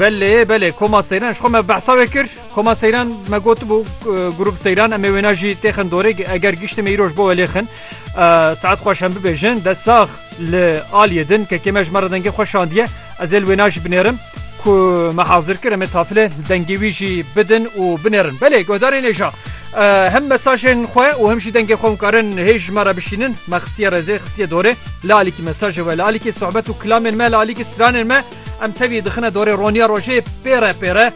Belê belê koma seyran ji xwe me behsa wê kir koma seyran me gotibû grûp seyran em ê wêna jî têxin dorê eger giştê me îroj bo welê xin saet xweş em bibêjin de sax li aliyê din kekê me ji me re dengê xwe şandiye ez ê li wêna jî binêrim ku me hazir kir em ê tafile dengê wî jî bidin û binêrin belê guhdarê nêja Him mesajên xwe û him jî dengê xwe hûn karin hê ji me re bişînin. Me xistiye rezê, xistiye dorê. Li alîkî mesajê we, li alîkî sohbet û kilamên me, li alîkî stranên me em tevî dixine dorê roniya rojê pêre pêre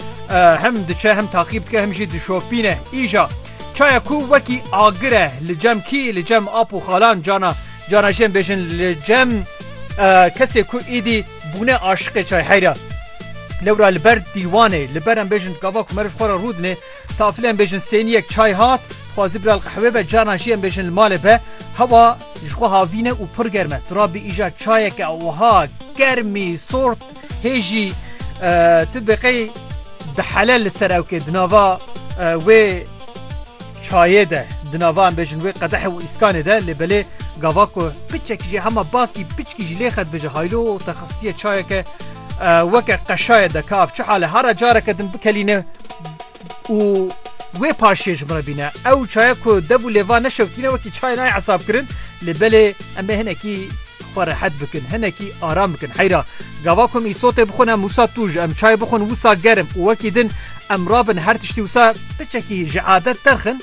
him diçe, him taqîb dike, him jî dişopîne. Îja çaya ku wekî agir e li cem kî, li cem ap û xalan cana cana jê em bêjin li cem kesê ku êdî bûne aşiqê çay heyra. Lewra li ber dîwanê li ber em bêjin gava ku meriv xwe re rû dinê Tafile em bêjin sêniyek çay hat, dixwazî bira li qehwê be, carna jî em bêjin li malê be. Hewa ji xwe havîn e û pir germ e. Tu rabî îja çayeke wiha germî, sort hê jî tu dibê qey dihele li ser ewkê di nava wê çayê de, di nava em bêjin wê qedehê û îskanê de lê belê gava ku piçekî jî hema bakî piçkî jî lê xet bêje haylo te xistiye çayeke Weke qeşaye de kav çi hale hara careke din bikelîne û wê paşê ji min re bîne. Ew çaya ku dev û lêva neşewtîne wekî çayê nayê hesabkirin lê belê em ê hinekî xwe rehet bikin, hinekî aram bikin. Heyra gava ku em îsotê bixwin em wisa tûj, em çayê bixwin wisa germ û wekî din em rabin her tiştî wisa piçekî ji adet derxin.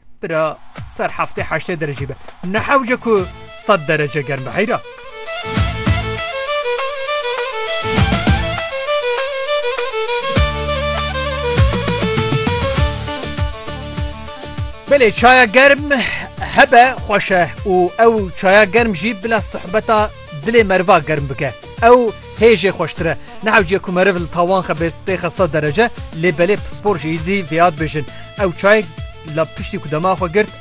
Bira ser heftê heştê derecî be. Nehewce ku sed derece germ be heyra. Belê çaya germ hebe xweş e û ew çaya germ jî bila sohbeta Dilê meriva germ bike ew hê jê xweştir e. Nehewciye ku meriv li tawan xe bê têxe sed derece lê belê pispor jî dî vêyad bêjin ew çayek li piştî ku dema xwe girt,